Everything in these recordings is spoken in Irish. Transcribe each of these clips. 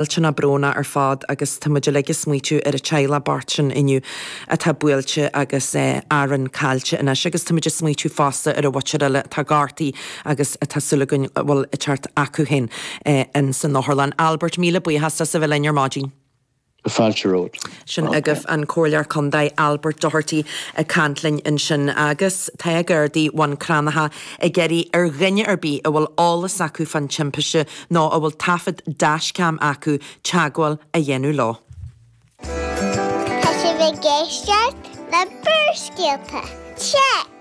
iontach, iontach brónach ar fad agus tá muid uilig ag smaoitiú ar theaghlach na beirte sin inniu atá buailte agus orainn caillte anois agus tá muid ag smaoitiú fosta ar an bheirt eile atá gortaithe agus atá súil againn a bhfuil siad ag teacht chucu féin ins an otharlann. Albert, míle buíochas as a bheith linn ar maidin. Fáilte romhat. sin agaibh an Comhairleoir Contae Albert Doherty ag caint linn ansin. Agus tá Gardaí Bhun Cranncha ag iarraidh ar dhuine ar bith a bhfuil eolas acu fán timpiste nó a bhfuil taifead dash-cam acu teagmháil a dhéanamh leo. Tá sibh ag éisteacht le Barrscéalta, Teic!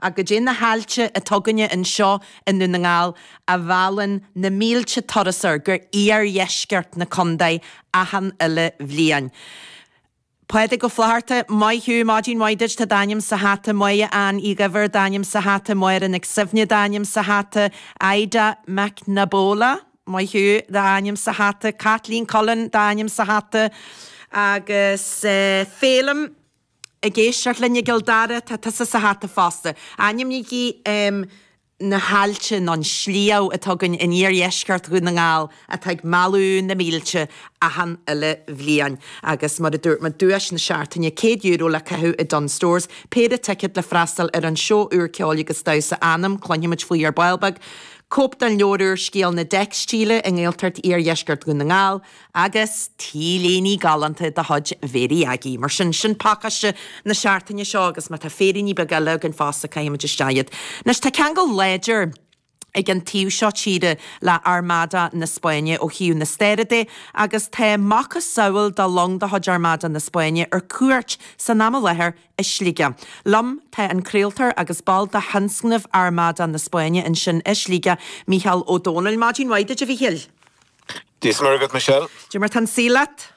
Ach goidé na haillte atá againne anseo i nDún na nGall a mheallann na mílte turasóir go iardheisceart na condae achan uile bhliain? Pádraig Ó Flatharta, maith thú, Maidin mhaith duit, tá d'ainm sa hata, Moya Ann Uí Dhuibhir, d'ainm sa hata, Máire Nic Suibhne, d'ainm sa hata, Ida McNabola, maith thú, d'ainm sa hata, Caitlín Cullen, d'ainm sa hata, agus Phelim. Ag éisteacht linn i gCill Dara, tá tusa sa hata fosta. Ainmnígí na haillte nó an sliabh atá againn in iardheisceart Dhún na nGall atá ag mealladh na mílte achan uile bhliain. Agus mar a dúirt mé, duais na seachtaine, €100 le caitheamh i Dunnes Stores, péire ticead le freastal ar an seó úr ceol agus damhsa Anam, cluinfimid faoi ar ball beag, cóip den leabhar úr Scéal na dTeicstíle i nGaeltacht iardheisceart Dhún na nGall, Agus t-léine galánta de chuid Mhary Aggie. Mar sin, sin pacáiste na seachtaine seo agus má tá féiríní beaga eile againn fosta caithfimid isteach iad. Anois, tá ceangal láidir ag an taobh seo tíre le Armada na Spáinne ó thaobh na staire de agus tá macasamhail de long de chuid Armada na Spáinne ar cuairt san am i láthair i Sligeach. Liom tá an craoltóir agus ball de thionscnamh Armada na Spáinne ansin i Sligeach, Mícheál Ó Domhnaill. Maidin mhaith duit, a Mhíchíl. Dia is Muire agat Michelle. Caidé mar atá an saol leat.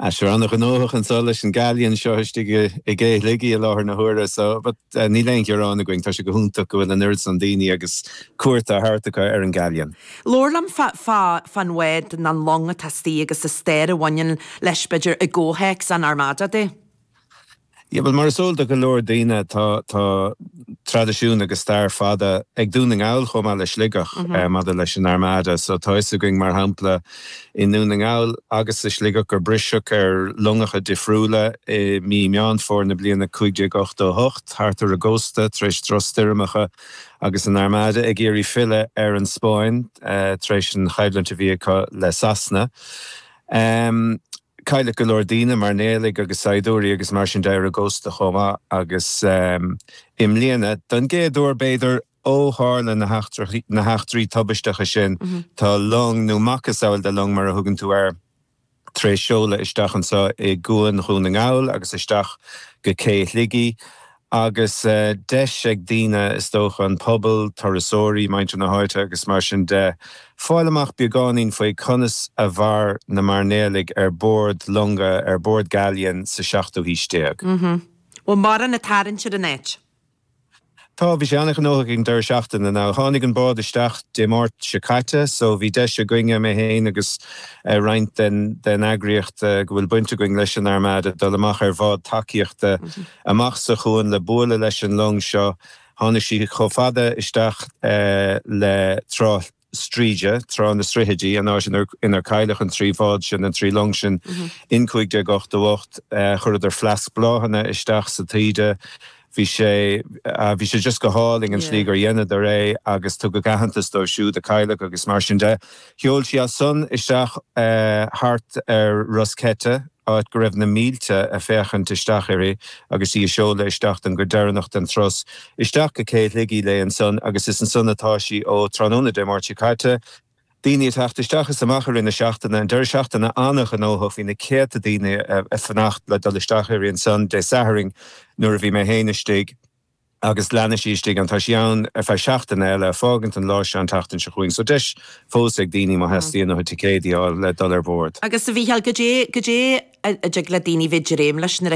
Sure an-ghnóthach anseo leis an galleon seo istigh i gcé Shligigh i láthair na huaire so but níl aon ghearán againn, tá sé go hiontach go bhfuil an oiread san daoine ag cuairt a thabhairt acu ar an galleon. Labhair liom fán bhád nó an long atá istigh agus an stair a bhaineann leis b'fhéidir i gcomhthéacs an Armada de. Yeah, bhuel, mar is eol do go leor daoine, tá, tá traidisiún agus stair fada ag Dún na nGall, chomh maith le Sligeach, maidir leis an Armada. So, tá 'fhios againn, mar shampla, i nDún na nGall agus i Sligeach gur briseadh ar longacha difriúla i mí Meán Fómhair na bliana 1588, thart ar an gcósta, tar éis drochstoirmeacha agus an Armada ag iarraidh filleadh ar an Spáinn tar éis an choimhlint a bhí acu le Sasana. Cailleadh go leor daoine, mairnéalaigh agus saighdiúirí agus mar sin de, ar an gcósta chomh maith agus i mbliana, don gcéad uair b'fhéidir ó tharla na heachtraí tubaisteacha sin, tá long, nó macasamhail de long mar a thugann tú air, tar éis seoladh isteach anseo i gCuan Dhún na nGall agus isteach go Cé Shligigh Agus deis ag daoine, is dócha, an pobal, turasóirí, muintir na háite agus mar sin de, fáil amach beagáinín faoi conas a mhair na mairnéalaigh ar bord longa, ar bord galleon, sa tseachtú haois déag. Mh-mh. Bhfuil mórán a' tarraingt ar an áit? Tá, bhí sé an-ghnóthach ag an deireadh seachtaine. Now, tháinig an bád isteach Dé Máirt seo caite, so bhí deis againne, mé féin agus roinnt den eagraíocht go bhfuil baint againne leis an Armada, dul amach ar bhád tacaíochta. amach sa chuan le bualadh leis an long seo. Tháinig sí chomh fada isteach le Trá Stríde, Trá na Srithidí, an áit inar cailleadh an trí bhád sin, an trí long sin, in 1588. Chuireadar fleasc bláthanna isteach sa taoide. Bhí sé, bhí sé just go hálainn an tslí gur dheineadar é agus tugadh aitheantas dóibh siúd a cailleadh agus mar sin de. Sheol sí as san isteach thart ar Ros Ceite, áit go raibh na mílte a' féachaint isteach uirthi agus í a' seoladh isteach don gcuid deireanach den turas, isteach go Cé Shligigh léi ansan agus is ansan atá sí ó tráthnóna Dé Máirt seo caite. Daoine a' teacht isteach is amach i rith na seachtaine, an deireadh seachtaine an-ghnóthach, bhí na céadta daoine a' fanacht le dul isteach uirthi ansan Dé Sathairn nuair a bhí mé féin istigh. agus leanfaidh sí istigh ann. Tá sí ann ar feadh seachtaine eile, a' fágaint an lá seo an tseachtain seo chugainn. So deis fós ag daoine, má theastaíonn uathu ticéidí a fháil, le dul ar bord. Agus a Mhícheáil, goidé, goidé a dtig le daoine bheith dréim leis nuair a.